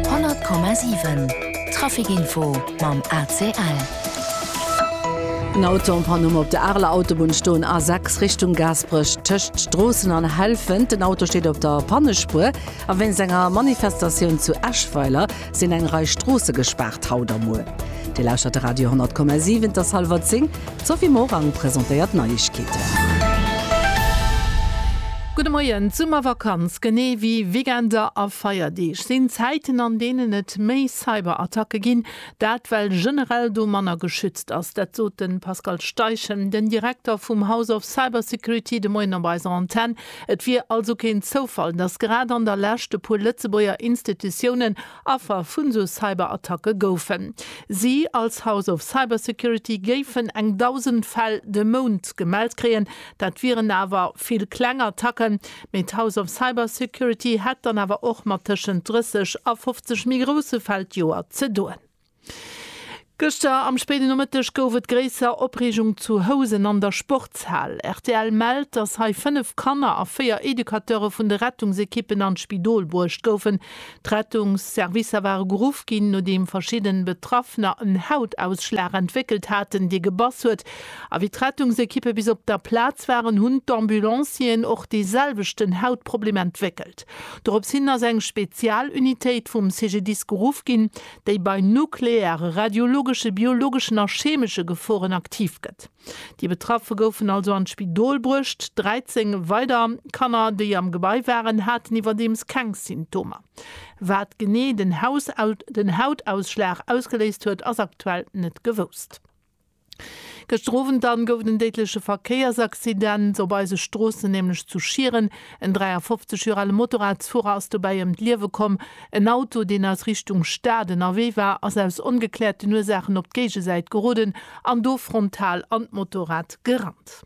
100,7 Traficinfo mam ACL. En Auto am Panne op der Areler Autobunn stoen, A6 Richtung Gaasperech tëscht Stroossen an Helfent. Den Auto steet op der Pannespuer a wéinst enger Manifestatioun zu Eschweiler. Sinn eng Rei Stroosse gespaart haut a muer? Dir lauschtert de Radio 10,7, et ass hallwer 10. D'Sophie Morang presentéiert d'Neiegkeeten. Gudde Moien. D'Summervakanz, genee wéi Weekender a Feierdeeg, sinn Zäiten, an deenen et méi Cyberattacke ginn. Dat well generell do manner geschützt ass. Dat sot de Pascal Steichen, den Direkter vum House of Cybersecurity, de Moien op eiser Antenne. Et wier also keen Zoufall, datt grad an der Lescht e puer Lëtzebuerger Institutiounen Affer vun sou Cyberattacke goufen. Si als House of Cybersecurity géifen eng 1.000 Fäll de Mount gemellt kréien. Dat wieren awer vill kleng Attacken, mee d'House of Cybersecurity hätt dann awer och mat tëschent 30 a 50 méi grousse Fäll d'Joer ze doen. Gëschter am spéiden Nomëtteg gouf et gréisser Opreegung zu Housen an der Sportshal. Rtl mellt, dass hei 5 Kanner a 4 Educateure vun de Rettungsekippen an d'Spidol bruecht goufen. D'Rettungsservicer ware geruff ginn, nodeem verschidden Betraffener en Hautausschlag entwéckelt haten, dee gebass huet. A wéi d'Rettungsekippe bis op der Plaz waren, hunn d'Ambulancieren och dee selwechten Hautproblem entwéckelt. Dorops hin ass eng Spezialunitéit vum CGDIS geruff ginn. déi bei nukleare, radiologesche, biologeschen a cheemesche Geforen aktiv gëtt. Déi Betraffe goufen also an d'Spidol bruecht. 13 weider Kanner, déi am Gebai waren, haten iwwerdeems keng Symptomer. Wat genee den Hautausschlag ausgeléist huet, ass aktuell net gewousst. Gëschter Owend dann gouf et en déidleche Verkéiersaccident op eise Stroossen, nämlech zu Schieren. En 53 Joer ale Motorradsfuerer ass dobäi ëm d'Liewe komm. En Auto, deen aus Richtung Stad ënnerwee war, ass aus ongekläerten Ursaachen op d'Géigesäit geroden an do frontal an d'Motorrad gerannt.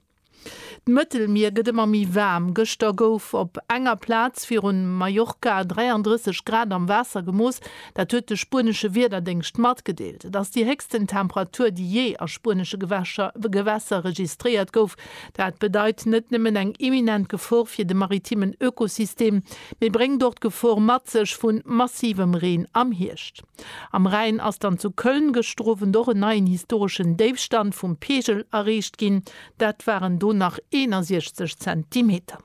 D'Mëttelmier gëtt ëmmer méi waarm. Gëschter gouf op enger Plaz virun Mallorca 33 Grad am Waasser gemooss. Dat huet de spuenesche Wiederdéngscht matgedeelt. Et ass déi héchsten Temperatur, déi jee a spuenesche Gewässer registréiert gouf. Dat bedeit net nëmmen eng imminent Gefor fir de maritimen Ökosystem, mee bréngt och d'Gefor mat sech vu massivem Reen am Hierscht. Am Rhäin ass dann zu Köln gëschter Owend och en neien historeschen Déifstand vum Peegel erreecht ginn, dat waren do nach 61 Zentimeter.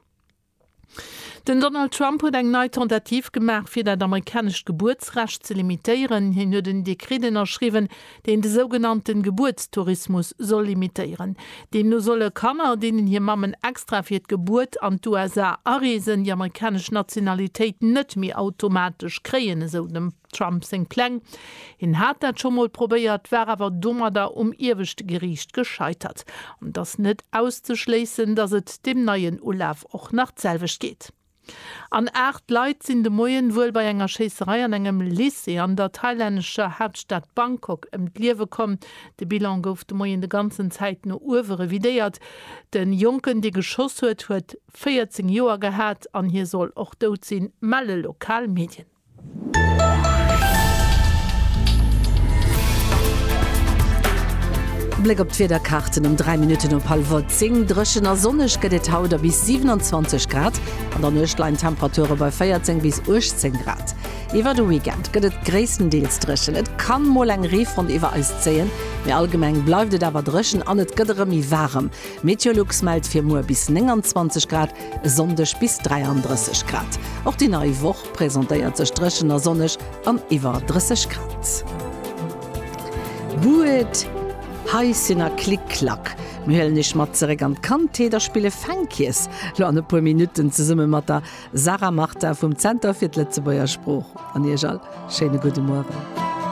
Den Donald Trump huet eng nei Tentativ gemaach, fir dat amerikanescht Gebuertsrecht ze limitéieren. Hien huet en Dekret ënnerschriwwen, deen de sougenannte Gebuertstourismus soll limitéieren. Deemno solle Kanner, deenen hir Mammen extra fir d'Gebuert an d'USA areesen, déi amerikanesch Nationalitéit net méi automatesch kréien, esou dem Trump seng Pläng. Hien hat dat scho mol probéiert, war awer domadder um ieweschte Geriicht gescheitert. An et ass net auszeschléissen, datt et deem neien Ulaf och nach d'selwecht geet. An 8 Leit sinn de Moien wuel bei enger Schéisserei an engem Lycée an der thailännescher Haaptstad Bangkok ëm d'Liewe komm. De Bilan gouf de Moien de ganzen Zäit no uewe revidéiert. De Jonken, dee geschoss huet, huet 14 Joer gehat an hie soll och dout sinn, melle lokal Medien. Bléck op d'Wiederkaarten um 3 Minutten op hallwer 10, Dréchen a sonneg gëtt et haut a bis 27 Grad. An der Nuecht leien d'Temperature bei 14 bis 18 Grad. Iwwer de Weekend gëtt et gréisstendeels dréchen, et ka mol eng Reefront iwwer eis zéien, mee allgemeng bleift et awer dréchen an et gëtt erëm méi waarem. Meteolux mellt fir muer bis 29 Grad, e Sonndeg bis 33 Grad. Och déi nei Woch. presentéiert sech dréchen a sonneg an iwwer 30 Grad. Buet, Hei sinn er Klick Klack. Mir huelen iech mat zeréck an d'Kandheet a spille Fänkjes lo an e puer Minutten zesumme mat der Sarah Martin vum Zenter fir d'Lëtzebuerger Sprooch. An iech all schéine gudde Mueren.